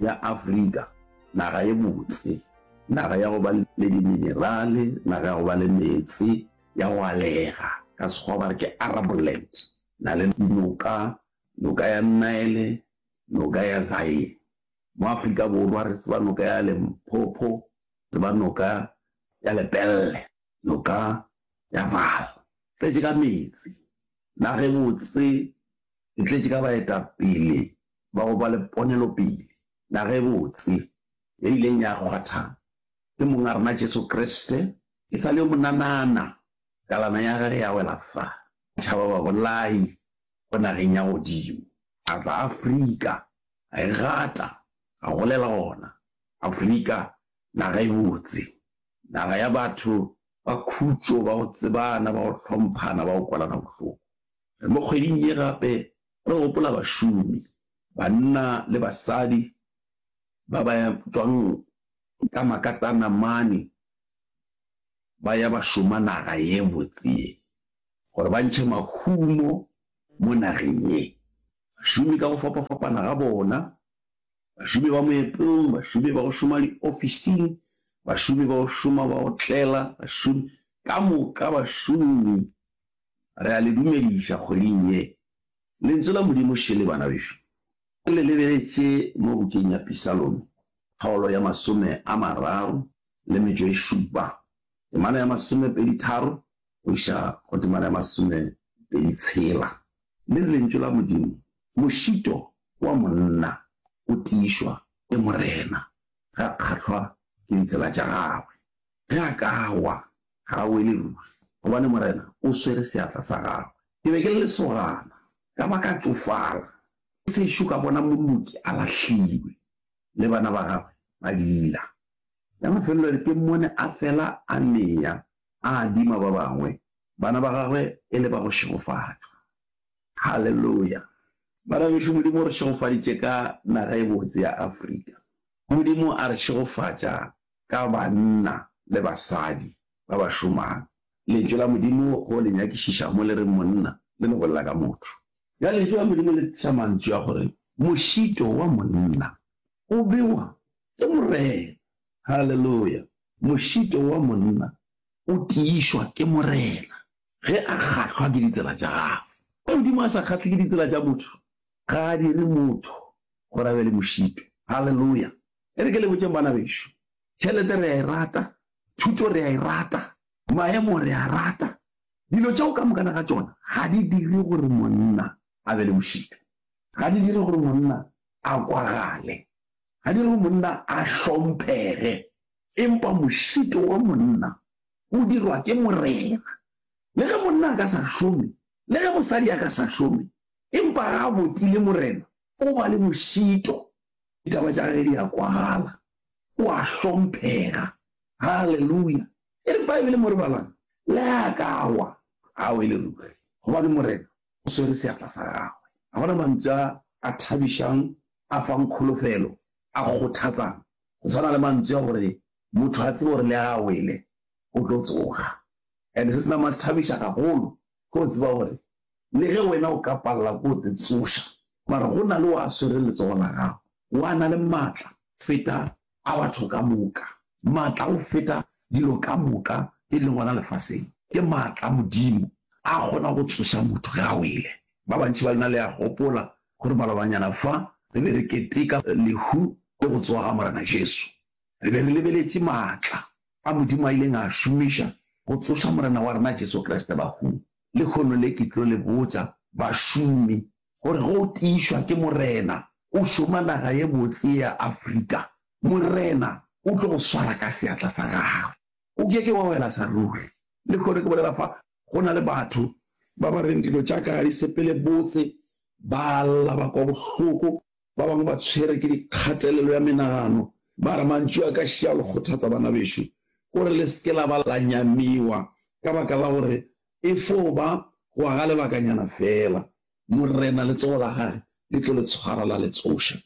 ya Afrika, naga ye botse, naga ya go ba le diminerale, naga ya go ba le meetse, ya go alega, ka Sekgowa ba re ke Arable Land, na le dinoka, noka ya Nile, noka ya Zaire. Mo Afrika Borwa re tseba noka ya Limpopo, tseba noka ya Lepelle, noka ya Vaal. Tletše ka meetse, naga e botse, e tletše ka baetapele ba go ba le ponelopele ya gabotse ye ileng ya kgwatha ke Monga rena Jesu Kriste e sa le yo monanana kalana ya Gage ya wela fa tšhaba babolai go nageng ya godimo. A tla Afrika, a e gata, a golela gona. Afrika, naga e botse, naga ya batho ba khutšo, ba go tsebana, ba go hlomphana, ba go kwelana bohloko. Re mo kgweding ye gape Re gopola bašomi, banna le basadi, ba ba tšwang ka makatana mane ba ya ba šoma naga ye botse ye, gore ba ntšhe mahumo mo nageng ye. Bašomi ka go fapafapana ga bona, bašomi ba moepong, bašomi ba go šoma diofising, bašomi ba go šoma ba otlela, bašomi ka moka, bašomi. Re a le dumediša kgweding ye. Lentšu la Modimo šele, bana bešo. Ke le lebeletše mo bukeng ya Pisalome, kgaolo ya masome a mararo le metšo e šupa, temana ya masomepedi-tharo go iša go temana ya masomepedi-tshela. Le re Lentšu la Modimo, Mošito wa monna o tiišwa ke Morena, ga kgahlwa ke ditsela tša gagwe. Ge a ka wa, ga a wele ruri, gobane Morena o swere seatla sa gagwe. Ke be ke le lesogana, ka ba ka tšofala, ke sešo ka bona moloki a lahlilwe, le bana ba gagwe ba diila. Ka mafelelong ke mmone a fela a nea, a adima ba bangwe, bana ba gagwe e le ba go šegofatšwa. Haleluya! Bana bešo, Modimo o re šegofaditše ka naga e botse ya Afrika. Modimo a re šegofatša ka banna le basadi ba ba šomang. Lentšu la Modimo go le nyakišiša mo le reng monna le no bolela ka motho. Bjale Lentšu la Modimo le tliša mantšu a gore mošito wa monna o bewa ke Morena. Haleluya! Mošito wa monna o tiišwa ke Morena ge a kgahlwa ke ditsela tša gagwe. Ge Modimo a sa kgahlwe ke ditsela tša motho, ga a dire motho gore a be le mošito. Haleluya! E re ke le botšeng bana bešo, tšhelete re a e rata, thuto re a e rata, maemo re a rata, dilo tšeo ka mokana ga tšona ga di dire gore monna a be le bošito, ga di dire gore monna a kwagale, ga di dire gore monna a hlomphege. Empa mošito wa monna o dirwa ke Morena. Le ge monna a ka sa šome, le ge mosadi a ka sa šome, empa ga a botile Morena, o ba le bošito. Ditaba tša gage di a kwagala. O a hlomphega. Haleluya! E re Baebele mo re balang, Le ge a ka wa, ga o e le ruri, gobane Morena o swere seatla sa gagwe. Ga go na mantswe a a thabišang, a fang kholofelo, a kgothatsang go swana le mantswe a gore motho a tsebe gore le ge a wele, o tlo tsoga. And se se nama se thabiša gagolo ge o tseba gore le ge wena o ka palela ke go te tsoša, mara go na le o a swere letsogo la gago. O a na le matla feta a batho ka moka, matla go feta dilo ka moka tše di leng gona lefaseng. Ke matla a Modimo a kgona go tsoša motho ge a wele. Ba bantši ba lena le a gopola gore malobanyana fa re be re keteka lehu le go tsoga ga Morena Jesu, re be re lebeletše matla a Modimo a ileng a a šomiša go tsoša Morena wa rena Jesu Kriste bahung. Lehono le ke tlo le botša bašomi gore ge o tiišwa ke Morena o šoma naga ye botse ya Afrika, Morena o tlo go swara ka seatla sa gagwe. O ke ke wa wela sa ruri. Lehono ke bolela fa go na le batho ba ba reng dilo tša ka ga di sepele botse, ba lla, ba kwa bohloko. Ba bangwe ba tshwere ke dikgatelelo ya menagano ba re, Mantšu a ka še a lo kgothatsa, banabešo, kore le se ke la ba la nyamiwa ka baka la gore e fo ba gwa ga lebakanyana feela Morena letsogo la gage le tlo le tshwara la le tsoša.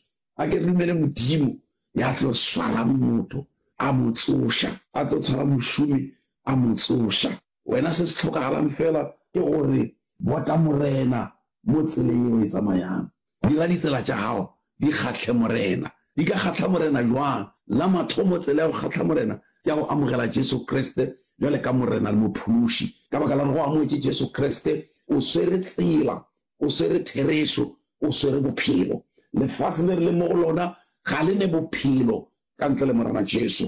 A ke re dumele Modimo ya tlo swarang motho a mo tsoša, a tlo tshwara mošomi a mo tsoša. Wena se se hlokagalang feela ke gore bota Morena mo tseleng yeo e tsamayang, Dira ditsela tša gago di kgahle Morena. Di ka kgahla Morena bjang? La mathomo, tsela ya go kgahla Morena ke ya go amogela Jesu Kriste bjale ka Morena le Mophološi. Ka baka la gore go amogetse Jesu Kriste, o swere tsela, o swere therešo, o swere bophelo. Lefase le re leng mo go lona ga le ne bophelo ka ntle le Morena Jesu.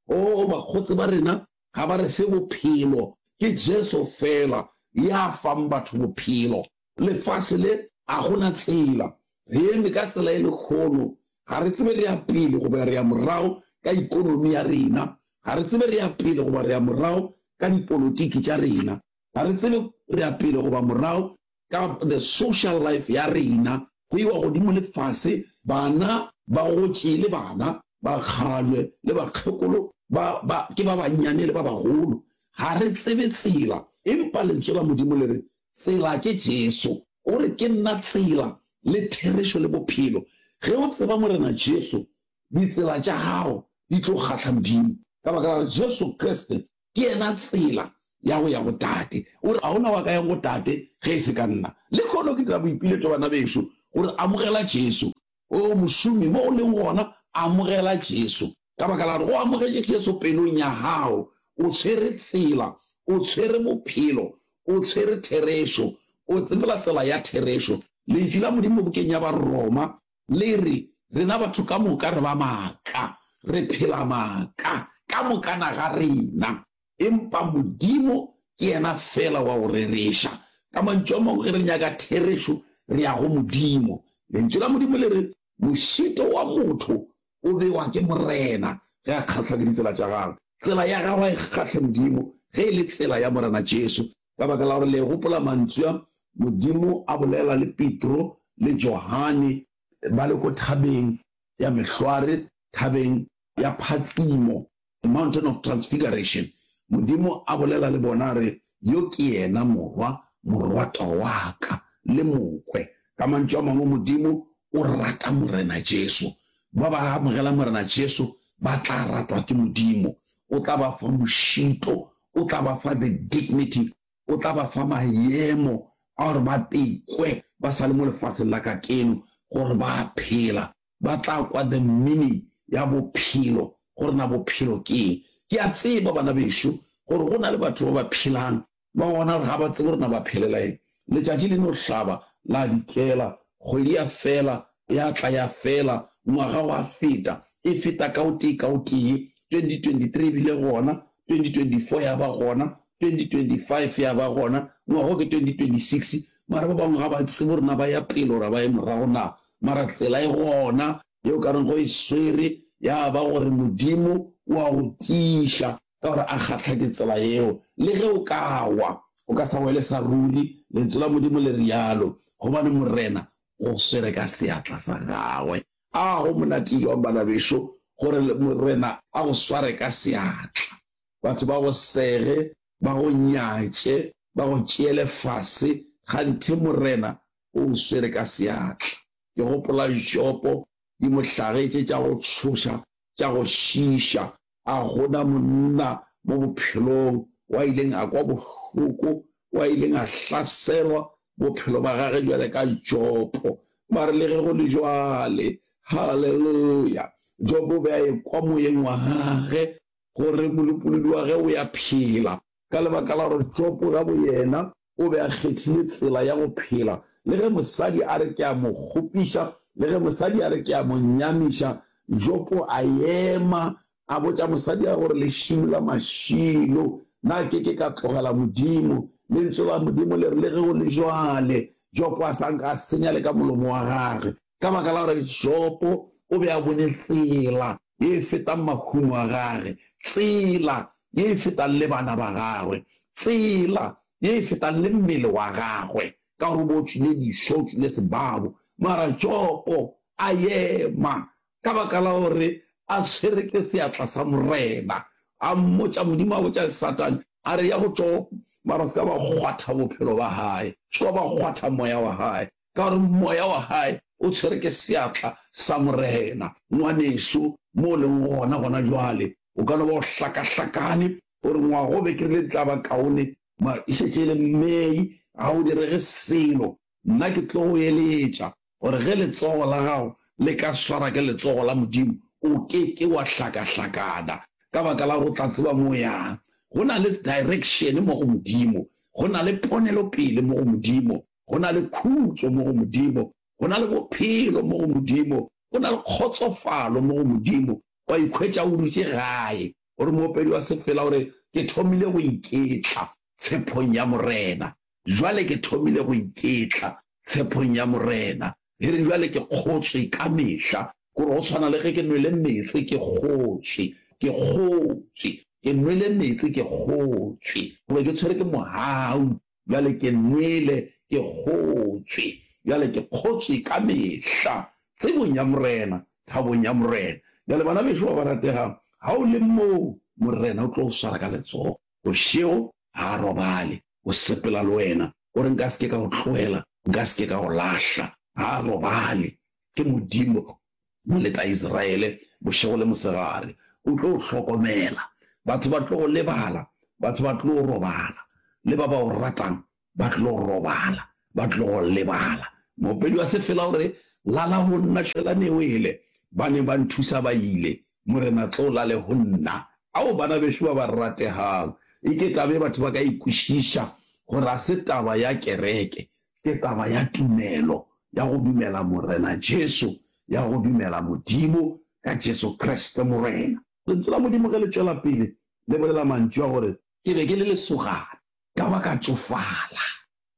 Oo, bakgotse ba rena ga ba re fe bophelo, ke Jesu feela ya fang batho bophelo. lefase le a go na tsela. Re eme ka tsela e lekgono. Ga re tsebe re ya pele goba re ya morago ka ikonomi ya rena. Ga re tsebe re ya pele goba re ya morago ka dipolotiki tša rena. Ga re tsebe re ya pele goba morago ka the social life ya rena. Go iwa godimo le fase, bana, bagotši le bana, bakgalabje le bakgekolo, ba, ba, ke ba bannyane le ba bagolo. Ga re tsebe tsela. Empa Lentswe la Modimo le re Tsela ke Jesu. O re, Ke nna tsela, le therešo, le bophelo. Ge o tseba Morena Jesu, ditsela tša gago di tlo kgahla Modimo, ka baka la gore Jesu Kriste ke yena tsela ya go ya go Tate. O re, Ga go na wa ka yang go Tate ge e se ka nna. Lehono ke dira boipiletšo, bana bešo, gore amogela Jesu. Oo mošomi, mo o leng gona, amogela Jesu. Ka baka la gore o amogetše Jesu pelong ya gago, o tshwere tsela, o tshwere bophelo, o tshwere therešo, o tsebela tsela ya therešo. Lentšu la Modimo bukeng ya Baroma le re, Rena batho ka moka re ba maaka, re phela maaka, ka mokana ga rena. Empa Modimo ke yena feela wa go rereša. Ka mantšu a mangwe, ge re nyaka therešo, re ya go Modimo. Lentšu la Modimo le re, Mošito wa motho o bewa ke Morena ge a kgahlwa ke ditsela tša gagwe. Tsela ya gago ga e kgahle Modimo, ge e le tsela ya Morena Jesu. Ka baka la gore le gopola mantšu a Modimo a bolela le Petro le Johane ba le ko thabeng ya mehlware, thabeng ya phatsimo. The Mountain of Transfiguration, Modimo a bolela le bona a re, Yo ke yena Morwa, Morwatwa wa ka, le Mokwe. Ka mantšu a mangwe, Modimo o rata Morena Jesu. Ba ba amogela Morena Jesu ba tla ratwa ke Modimo. O tla ba fa mošito, o tla ba fa the dignity, o tla ba fa maemo a gore ba tekwe ba sa le mo lefaseng la kakeno gore ba a phela. ba tla kwa the meaning ya bophelo, gore na bophelo ke eng. Ke a tseba bana bešo gore go na le batho ba ba phelang ba bona gore ga ba tsebe gore na ba phelela eng. Letšatši le no hlaba, la dikela, kgwedi ya fela, ya tla ya fela, ngwaga wa feta, e feta ka o tee ka o tee, 2023 e bile gona, 2024 ya ba gona, 2025 ya ba gona, ngwaga o ke 2026, mara ba bangwe ga ba tsebe gore na ba ya pele ora ba ye morago na, mara tsela e gona ye o ka reng go e swere ya ba gore Modimo o a go tiiša ka gore a kgatlha ke tsela yeo. Le ge o ka wa, o ka sa wele sa ruri, Lentso la Modimo le realo, gobane Morena go swere ka seatla sa Gagwe. A go monate jwang, bana bešo, gore Morena a go sware ka seatla! Batho ba go sege, ba go nyatše, ba go tšeele fase, kganthe Morena o o swere ka seatla. Ke gopola Jopo, dimohlage tše tša go tšhoša tša go šiiša. A go na monna mo bophelong o a ileng a kwa bohloko, o a ileng a hlaselwa, bophelo bja gagwe bjale ka Jopo? Mare le ge go le bjale, haleluya, Jopo o be a ekwa moyeng wa gagwe gore molopolodi wa gagwe o ya phela, ka lebaka la gore Jopo ka boyena o be a kgethile tsela ya go phela, le ge mosadi a re ke a mo kgopiša, le ge mosadi a re ke a mo nyamiša, Jopo a ema, a botša mosadi a gore, Lešilo la mašilo, na ke ke ka tlogela Modimo? Lentso la Modimo le re, Le ge go le bjale, Jopo a sa nka a senya le ka molomo wa gage. ka baka la gore Jopo o be a bone tsela ye e fetang mahumo a gage, tsela ye e fetang le bana ba gagwe, tsela ye e fetang le mmele wa gagwe, ka gore o be o tšwile dišo, o tšwile sebabo. Mara Jopo a ema ka baka la gore a tshwere ke seatla sa Morena. A mmotša, Modimo a botša Satane a re, Ya go Jopo, mara o se ka ba kgwatha bophelo ba gae, o se ka ba kgwatha moya wa gae, ka gore moya wa gae o tshwere ke seatla sa Morena. Ngwaneso, mo o leng gona gona jwale, o ka no ba o hlakahlakane, o re, Ngwaga o be ke rile di tla ba kaone, mara e šetše e le May, ga go direge selo. Nna ke tlo go eletša gore ge letsogo la gago le ka swara ke letsogo la Modimo, o ke ke wa hlakahlakana, ka baka la gore o tla tseba mo o yang. Go na le direction mo go Modimo, go na le ponelopele mo go Modimo. go na le khutšo mo go Modimo, go na le bophelo mo go Modimo, go na le kgotsofalo mo go Modimo, wa ikhwetša o dutše gae. Gore moopedi wa sefela o re, Ke thomile go iketla tshephong ya Morena. Jwale ke thomile go iketla tshephong ya Morena. Re re, Jwale ke kgotswe ka mehla. Ke gore go tshwana le ge ke nwele meetse ke kgotswe. Ke kgotswe. Ke nwele meetse ke kgotswe. Goba ke tshwere ke mohau. Bjale ke nwele, ke kgotšwe, bjale ke kgotšwe ka mehla, tsebong ya Morena, thabong ya Morena. Bjale, bana bešo ba ba rategang, ga o le mo, Morena o tlo go swara ka letsogo bošego, ga a robale, o sepela le wena. O re, Nka se ke ka go tloela, Nka se ke ka go lahla. Ga a robale. Ke Modimo. Mo letla Isiraele bošego le mosegare, o tlo o hlokomela. Batho ba tlo go lebala, batho ba tlo robala, le ba ba o ratang ba tlo robala, ba tlo go lebala. Moopedi wa sefela o re, Lala go nna, šwelane o ele. Ba neng ba nthusa ba ile, Morena tlo o lale go nna. Ao, bana bešo ba ba rategang, e ke kabe batho ba ka e kwešiša gore ga se taba ya kereke, ke taba ya tumelo, ya go dumela Morena Jesu, ya go dumela Modimo ka Jesu Kriste Morena. Lentswe la Modimo ge le tšwela pele le bolela mantšu a gore. Ke be ke le lesogana, ka ba ka tšofala,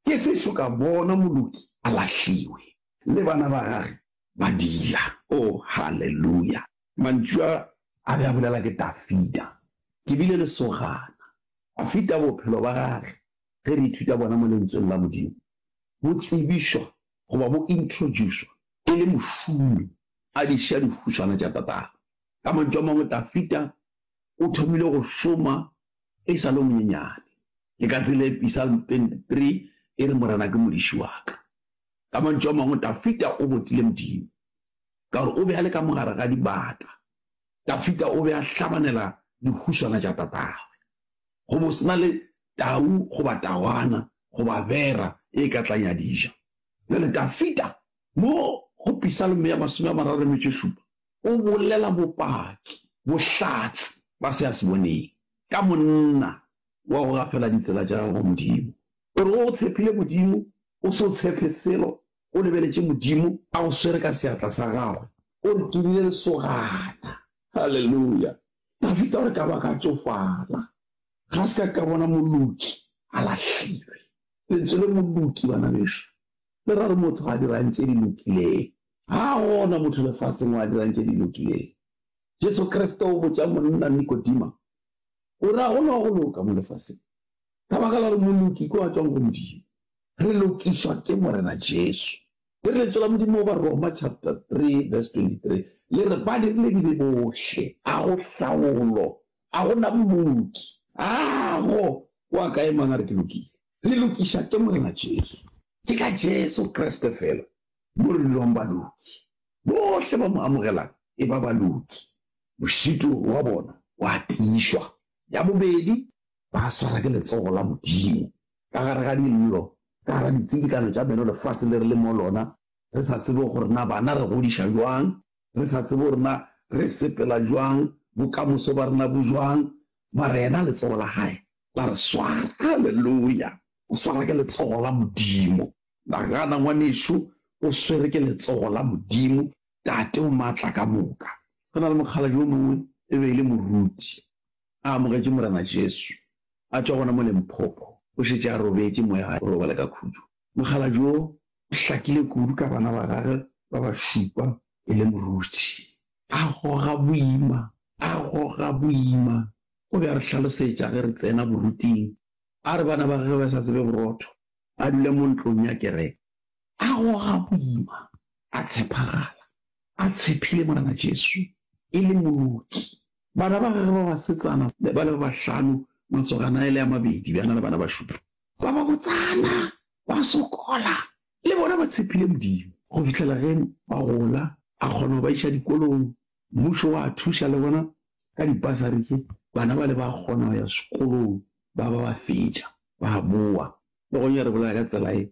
ke se šo ka bona moloki a lahliwe, le bana ba gage ba dila. Oh, haleluya! Mantšu a, a be a bolela ke Dafida. Ke bile lesogana. A feta bophelo ba gage ge re ithuta bona mo Lentsweng la Modimo, bo tsebišwa goba bo introducwa e le mošomi a di ša dihuswana tša tatagwe. Ka mantšu a mangwe, Dafida o thomile go šoma e sa le o monyenyane. Ke ka tsela e Pisalm 23 e re, Morena ke modiši wa ka. Ka mantšu a mangwe, Dafida o botile Modimo ka gore o be a le ka mogare ga dibata. Dafida o be a hlabanela dihuswana tša tatagwe. go bo se na le tau goba tawana goba bera e ka tlang ya di ja. Bjale Dafida mo go Pisalmo ya masome a mararo le metšo e šupa o bolela bopaki, bohlatse ba se a se boneng, ka monna wa go gafela ditsela tša gagwe go Modimo. O re o tshepile Modimo, o se o tshepe selo, o lebeletše Modimo, a go swere ka seatla sa gagwe, o re ke bile lesogana. Haleluya! Dafita o re, Ka ba ka tsofala, ga se ka ka bona moloki a lahlilwe. Lentswe le moloki, bana beso, le ra re motho ga a dirang tše di lokileng. Ga gona motho lefaseng o a dirang tše di lokileng. Jesu Kriste o botša monna Nikodima, o re, Ga go na wa go loka mo lefaseng, ka baka la gore moloki ke wa tšwang go Modimo. Re lokišwa ke Morena Jesu. Ke re Lentso la Modimo, Baroma chapter 3 verse 23, le re ba dirile dibe bohle, a go hlaolo, a go na mmoki, a go wa ka e mang a re ke lokile. Re lokiša ke Morena Jesu. Ke ka Jesu Kriste fela mo re bilwang baloki. Bohle ba mo amogelang e ba baloki, mošito wa bona wa tiišwa ya bobedi. ba swara ke letsogo la Modimo ka gare ga dillo, ka gare ga ditsidikano tša meno lefase le re le mo lona, re sa tsebe gore na bana re godiša jwang, re sa tsebe gore na re sepela jwang, bokamoso ba rena bo jwang, mara yena letsogo la gae la re swara. Haleluya! O swara ke letsogo la Modimo. Nagana, ngwanešu, o swere ke letsogo la Modimo, Tate o maatla ka moka. Go na le mokgalabje o mongwe, e be e le moruti. a amogetše Morena Jesu, a tšwa gona mo Limpopo, o šetše a robetše mo ya gagwe go robala ka khutšo. Mogala jo o hlakile kudu ka bana ba gagwe ba ba šupa e le moruti. A goga boima, a goga boima. O be a re hlalosetša ge re tsena boruting, a re bana ba gagwe ba sa tsebe borotho, ba dula mo ntlong ya kereke. a goga boima, a tshepagala, a tshepile Morena Jesu e le Moloki. Bana ba gagwe ba basetsana ba le ba bahlano, masogana a e le a mabedi, bjana le bana ba šupro ba babotsana, ba sokola, le bona ba tshepile Modimo. Go fihlela ge ba gola, a kgona go ba iša dikolong. Mmušo wa thuša le gona ka dibasari tše bana bale ba kgona go ya sekolong, ba ba ba fetša, ba boa. Le gonyare bolaya ka tsela ye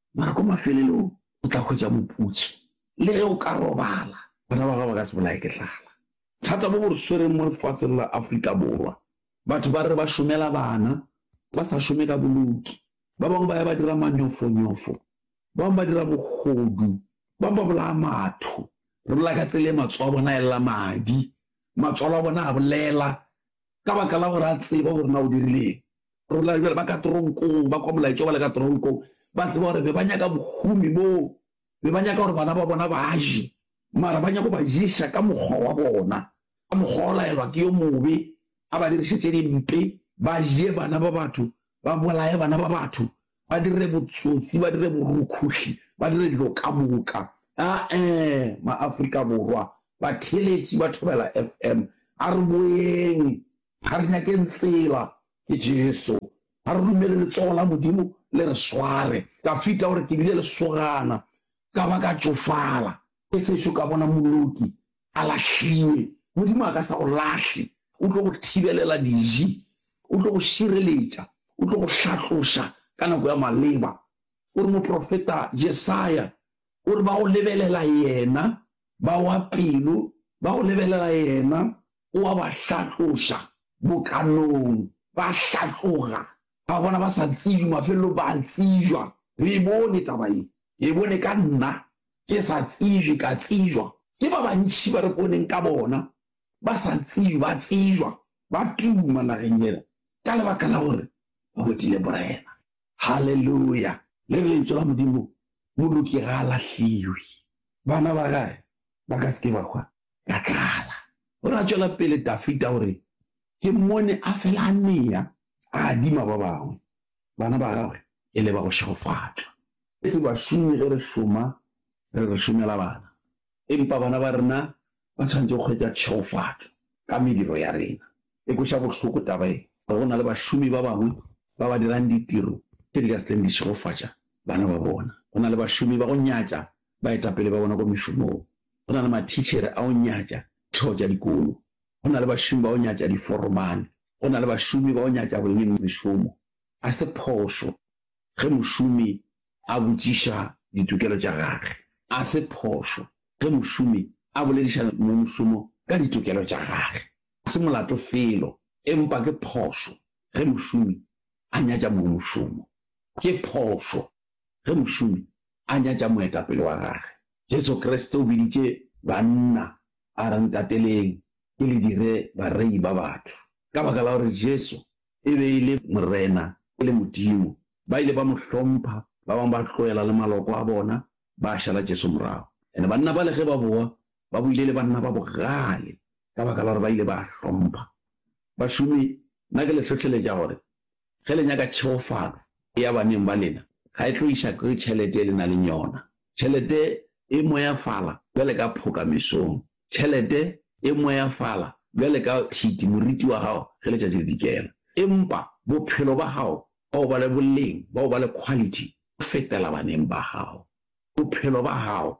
mara kwa mafelelong o tla hwetša moputso. Le ge o ka robala, bana ba gago ba ka se bolaye ke tlala. Thata bo bo re swereng mo lefaseng la Afrika Borwa, batho ba re ba šomela bana, ba sa šome ka boloki. Ba bangwe ba ya ba dira manyofonyofo, ba bangwe ba dira bogodu, ba bangwe ba bolaya matho. Re bolela ka tsela e matsogo a bona a elela madi, matswalo a bona a bolela, ka baka la gore a tseba gore na o dirile eng. Rona jale ba ka toronkong ba kwa molaetša ba le ka toronkong ba tseba gore be ba nyaka bohumi boo be ba nyaka gore bana ba bona ba je mara ba nyako ba ješa ka mokgwa wa bona ka mokgwa o laelwa ke yo mobe a ba dirišetse dimpe ba je bana ba batho ba bolaye bana ba batho ba dire botsotsi, ba dire borukhuhli, ba dire dilo ka moka. Ae, maAfrika Borwa, batheeletši ba Thobela FM, a re boyeng, ga re nyakeng tsela, ke Jesu. A re dumele letsogo la Modimo le re sware. Dafita o re, Ke bile lesogana, ka ba ka tšofala. E sešo ka bona moloki a lahlilwe, Modimo a ka se go lahle. O tlo go thibelela diji, o tlo go šireletša, o tlo go hlatloša ka nako ya maleba. O re moprofeta Jesaya o re ba go lebelela yena ba wa pelo, ba go lebelela yena o a ba hlatloša. Bokanong ba hlatloga, ba bona ba sa tsejwe, mafelelong ba a tsejwa. Re e bone taba ye, ke e bone ka nna, Ke sa tsejwe, ka tsejwa. Ke ba bantši ba re boneng ka bona, ba sa tsejwe, ba tsejwa, ba tuma nageng yela ka lebaka la gore ba botile Morena. Haleluya! Le Lentso la Modimo, Moloki ga a lahliwe. Bana ba gage ba ka se ke ba hwa ka tlala. O re a tšwela pele, Dafida o re, Ke mmone a fela a nea, a adima ba bangwe, bana ba gagwe e le ba go šegofatšwa. Etse bašomi ge re šoma, re re šomela bana, empa bana ba rena ba tshwanetše go hwetša tšhegofatšo ka mediro ya rena. E kweša bohloko taba ye gore go na le bašomi ba bangwe ba ba dirang ditiro tše di ka se tleng di tšhegofatša bana ba bona. Go na le bašomi ba go nyatša baetapele ba bona kwa mešomong. Go na le mathitšhere a go nyatša ditheo tša dikolo. Go na le bašomi ba go nyatša diforomane. Go na le bašomi ba go nyatša boemedi mešomo. Ga se phošo. ge mošomi a botšiša ditokelo tša gage. A se phošo ge mošomi a bolediša mongmošomo ka ditokelo tša gage. A se molato felo, empa ke phošo ge mošomi a nyatša mongmošomo. Ke phošo ge mošomi a nyatša moetapele wa gage. Jesu Kriste o biditše banna a re, Ntateleng, ke le dire barei ba batho. Ka baka la gore Jesu e be e le Morena, e le Modimo. Ba ile ba mo hlompha, ba bangwe ba tloela le maloko a bona, ba šala Jesu morago. And banna bale ge ba boa, ba boile e le banna ba bogale, ka baka la gore ba ile ba hlompha. Bašomi, nna ke le hlohleletša gore, ge le nyaka tšheofalo e ya baneng ba lena, ga e tlo iša ke tšhelete e le na leng yona. Tšhelete e moyafala bjale ka phoka mesong. Tšhelete e moyafala bjale ka thiti moriti wa gago ge letšatši le dikela. Empa bophelo ba gago ba o ba le boleng, ba o ba le quality go fetela baneng ba gago. Bophelo ba gago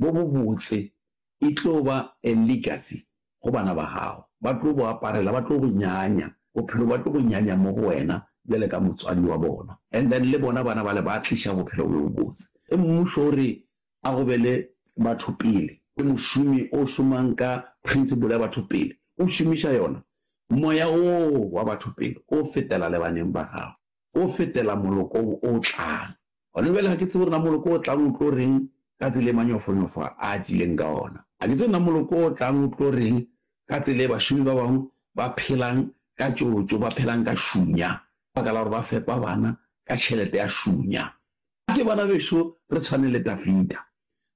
bo bobotse e tlo ba a legacy go bana ba gago. Ba tlo bo aparela, ba tlo bo nyanya, bophelo ba tlo bo nyanya mo go wena bjale ka motswadi wa bona. And then le bona bana bale ba tliša bophelo bo bobotse. Ge mmušo o re a go be le batho pele. Ke mošomi o šomang ka principle ya batho pele, o šomiša yona. Moya woo wa batho pele o fetela le baneng ba gago, o fetela molokong o tlang. Gona bjale ga ke tsebe gore na moloko o tlang o tlo reng ka tsela e manyofonyofo a a tšileng ka ona. Ga ke tsebe na moloko o tlang o tlo reng ka tsela e bašomi ba bangwe ba phelang ka tšotšo, ba phelang ka šunya, ka baka la gore ba fepa bana ka tšhelete ya šunya. A ke bana bešo re tshwane le Dafida,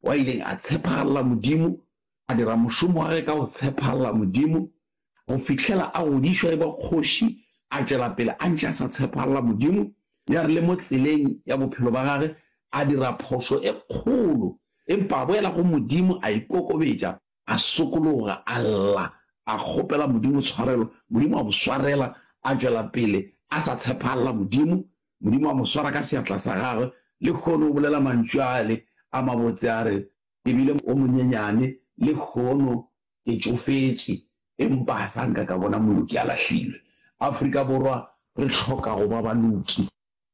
wa ileng a tshephaalla Modimo, a dira mošomo wa ge ka go tshephaalla Modimo, go fihlela a godišwa e ba kgoši, a tšwela pele a ntše a sa tshephaalla Modimo, ya re le mo tseleng ya bophelo ba gage a dira phošo e kgolo, empa a boela go Modimo a ikokobetša. a sokologa, a lla, a kgopela Modimo tshwarelo, Modimo a mo swarela, a tšwela pele a sa tshepahala Modimo, Modimo a mo swara ka seatla sa gagwe, lehono o bolela mantšu ale a mabotse a re, Ke bile o monyenyane, lehono ke tšofetše, empa ga sa nka ka bona moloki a lahlilwe. Afrika Borwa re hloka go ba baloki.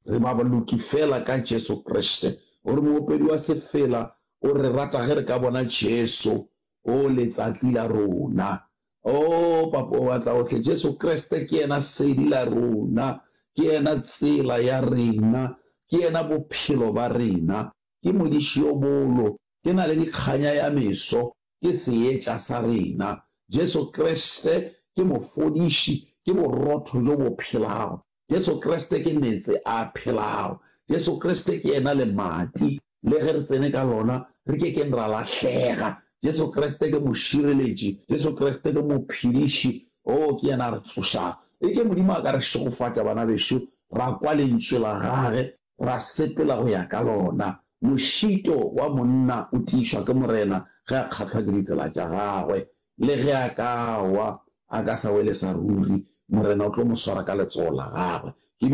Re ba baloki feela ka Jesu Kriste. O re moopedi wa sefela o re rata ge re ka bona Jesu. O letsatsi la rona. Oo, Papa wa Matlaohle, Jesu Kriste ke yena sedi la rona. Ke yena tsela ya rena. Ke yena bophelo ba rena. Ke modiši yo bolo. Ke naledi-kganya ya meso. Ke seetša sa rena. Jesu Kriste ke mofodiši. Ke borotho bjo bo phelago. Jesu Kriste ke meetse a phelago. Jesu Kriste ke yena lemati le ge re tsene ka lona re ke keng ra lahlega. Jesu Kriste ke mošireletši. Jesu Kriste ke mophediši. Oo, ke yena a re tsošago. E ke Modimo a ka re šegofatša, bana bešo, ra kwa Lentšu la gage, ra sepela go ya ka lona. Mošito wa monna o tiišwa ke Morena ge a kgahlwa ke ditsela tša gagwe. Le ge a ka wa, a ka sa wele sa ruri, Morena o tlo mo swara ka letsogo la Gagwe.